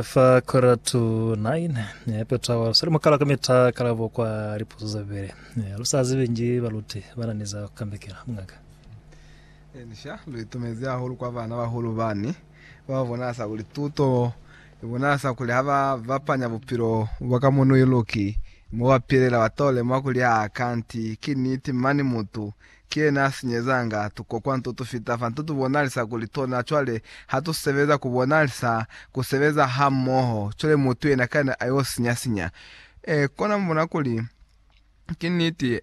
Fa quarter to nine eh, peta wa sali mukala ka mita kalabo kwa lipuzo za bibele eh, lu sa zibi nji baluti ba na ni za ku kambekela mungaka Elisha lu itumezi hahulu kwa bana bahulu bani ba ba bonasa kuli tuto i bonasa kuli ha ba bapanya bupilo bwa ka munu iluki mo ba pilela ba to lemwa kuli aa kanti ki niti mani mutu Ki yena a sinyezanga tukokwa nto tu fita fa nto tu bonalisa kuli tona. Cwale ha tu sebeza ku bonalisa ku sebeza hamoho, cwale mutu yena kana a yo sinya-sinya. Ee, kona mu bona kuli ki niti.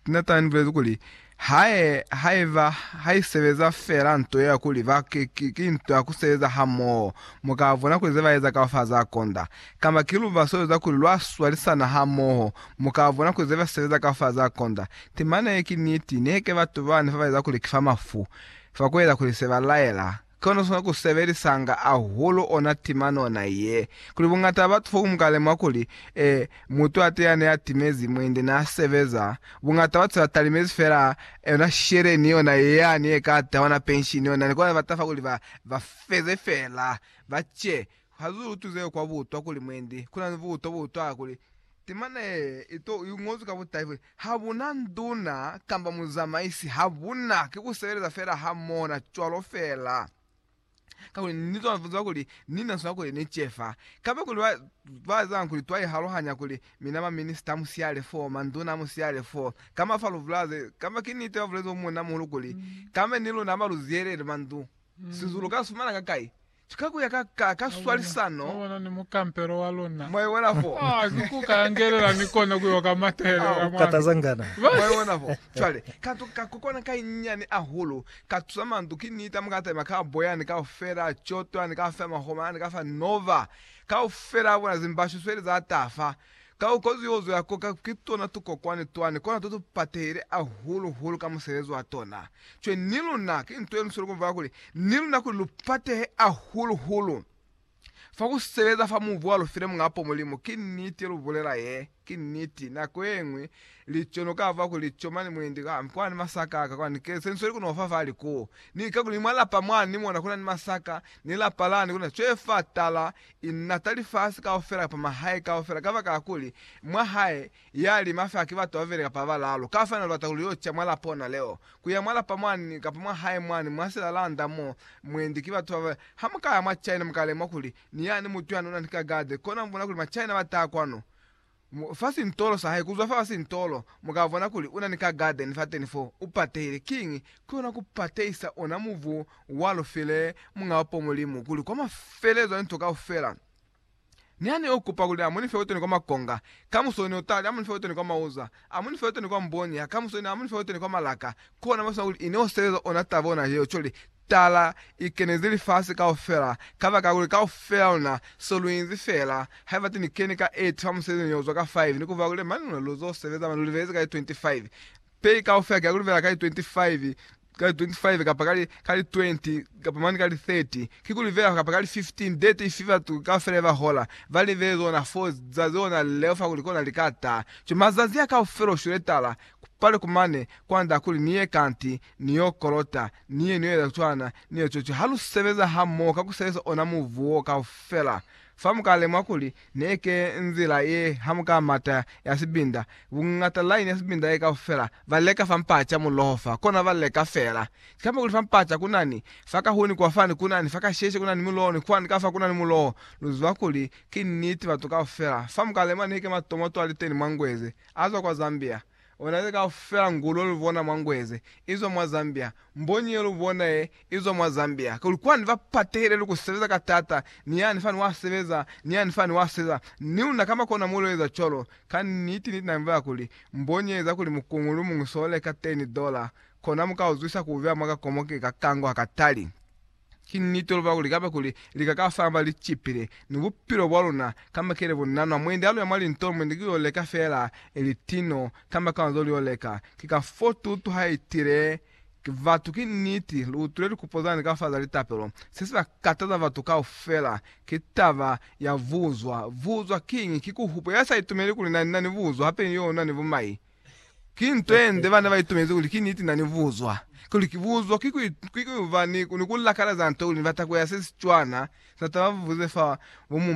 Nathan ni bulezi kuli, Hae, haiba, ha i sebeza fela nto ye ya kuli ba, ki, ki, ki nto ya ku sebeza hamoho, mu ka bona kuli ze ba eza kaufela za konda. Kamba ki lubaso lweza kuli lwa swalisana hamoho, mu ka bona kuli ze ba sebeza kaufela za konda. Temana ye ki niti, niheke batu bani fa baeza kuli ki fa mafu, fa kueza kuli se ba laela, ki ona sona ku sebelisanga ahulu ona temana ona ye. Kuli bungata ba batu foku muka lemuha kuli, ee, mutu ate yani a timezi, muindi na sebeza, bungata batu se ba talimezi fela yona sheleni yona yani ye ka tahwa na penshini yona, ni kona ba tafa kuli ba, ba feze fela, ba ce. Ha zu tuze kwa butwa kuli mwendi kuna ni butwa bo utwala kuli timana ye ito i ngozwi ka butahi kuli, Ha bu na nduna kamba muzamaisi, ha bu na, ki ku sebeleza fela ha mona cwalo fela. Kakuli ni zwa ziba kuli ni na swana kuli ni cefa. Kamba kuli ba, ba ezanga kuli twa ihalohanya kuli mina ba minista a musiyale foo, manduna a musiyale foo, kamba fa lubulaze, kamba ki niti ba bulezi o munna muhulu kuli, Kamba ni luna ba lu ziyelele mandu, sizulu ka sifumana ka kai? Ki ka kuya ka ka ka swalisano. Mwabona ni mukampelo wa luna. Mwaiwela fo. Ah, ki ku ka yangelela ni kona ku yo ka matelela Au. mwami. Katazangana. Mwaiwona fo. Cwale, kantu ka ku kona ka inyani ahulu, ka tusa mandu, ki nita, mu ka taima ka boyani kaufela, cotwani kaufela, mahoma ani kaufela, nova, kaufela a bona, zimbashu sweli za tafa, Ka ku kozi yo zwela koka ki tona tukokwani twani kona to tu patehile ahulu hulu ka musebezi wa tona. Cwe ni luna ki nto ye lusweli ku vaka kuli ni luna kuli lu patehe ahulu hulu fa ku sebeza fa mubu wa lu file Muñ'a po Mulimu. Ki niti ye lu bulela ye. Ki niti. Nako ye ñwi lico no ka vwa kuli lico mane mwendi kambe kwa na ni masaka aka kwani ke se ni sweli ku no fa fa li ku ni. Kakuli ni mwa lapa mwani ni mona kuna ni masaka ni lapa lani kuna cwe fa tala I nata lifasi kaufela kapa mahae kaufela kabakala kuli mwa hae ya lima fela ki batu babeli kapa balaalu. Kafanelo lubata kuli yo ca mwa lapa ona leo, kuya mwa lapa mwani kapa mwa hae mwani mwa silalanda mo mwendi ki batu baba. Ha mukaya mwa China mukalemuha kuli ni yani mutu yani unani ka garde, kona mubona kuli ma China bataha kwanu. Mu fa sintolo sa hae kuzwa fa ba sintolo, mu ka bona kuli una ni ka garden fateni fo, u patehile. Kiñi? Ki ona ku patehisa ona mubu wa lu file Muñ'a wa po Mulimu, kuli kwa mafelelezo a linto kaufela, Ni ha Ni yo kupa kuli a mu ni fe wetoni kwa makonga, kamuso Ni yo tali, a mu ni fe wetoni kwa mauza. Amu nifa yoteni kwa mboni ya kamuso ina amu nifa yoteni kwa malaka, kona masina kuli ine useeza ona taba ona yeo coli, tala, ikenezi lifasi kaufela, kabaka kuli kaufela luna so luinzi fela, haiba ti nikeni ka 8 fa musebezi ni yozwa ka 5 ni kufa kuli mani luna luzo sebeza mani lulibelezi ka li 25 pei kaufela kia kulibela ka li 25, ka li 25 kapa ka li, ka li 20, kapa mane ka li 30, kikuli fela kapa ka li 15 de tifi batu kaufela ba hola, ba libe zona fo za zona leo fa kuli kona li ka ta. Cwale mazazi a kaufela u shwile tala, ku pale ku mane, kwand'a kuli ni ye kanti, ni y'o kolota, ni ye ni y'o eza cwana, ni y'o cwacwa. Ha lu sebeza hamoho ka ku sebeza ona mubu wo kaufela, Fa mukale mwa kuli neke nzila ye ha muka mata ya sibinda, bungata line ya sibinda ye kaufela ba leka fa mpaca muloho fa kona ba leka fela. Kikamba kuli fa mpaca kunani fa kahuni kwa fani kunani fa kasheshe kunani muloho ni kwani ka fa kunani muloho. Lu ziba kuli ki niti batu kaufela fa mukale mwa neke matomo twaliteni mwa Ngweze azwa kwa Zambia. Ona ze kaufela ngulwe lu bona mwa Ngweze izwa mwa Zambia, mbonyi ye lu bona ye izwa mwa Zambia, kuli kwani ba patehile ni ku sebeza ka taata, ni yani fani wa sebeza, ni yani fani wa seza, ni luna kamba kona mu lu eza cwalo. Ka niti, niti na nbela kuli, mbonyi ye eza kuli mukungu lu muñwi so leka teni dola, kona mu ka uzwisa ku ubeha mwa ka komoke ka kango ha ka tali. Ki niti lwa kuli kaba kuli lika ka famba li cipile ni bupilo bwa luna kamba kile bu nanwa, mwendi aluya mwa lintolo mwendi ki yo leka fela ili tino kamba kanzo li yo leka. Ki ka fo tutu ha itile ki batu, Ki niti, lu utwile likupo zani ka fa za litapelo. Se si ba kataza batu kaufela ki taba ya buzwa. Buzwa kiñi? Ki ku hupe ya sa itumeli kuli na, na ni buzwa, hape ni yo na ni bumai. Ki nto ye nde bana ba itumezi kuli ki niti na ni buzwa. Kuli ki buzwa ki kuiba ni ku lakala za nto kuli ni bata kuya se si cwana sa taba ba buze fa bo mumba.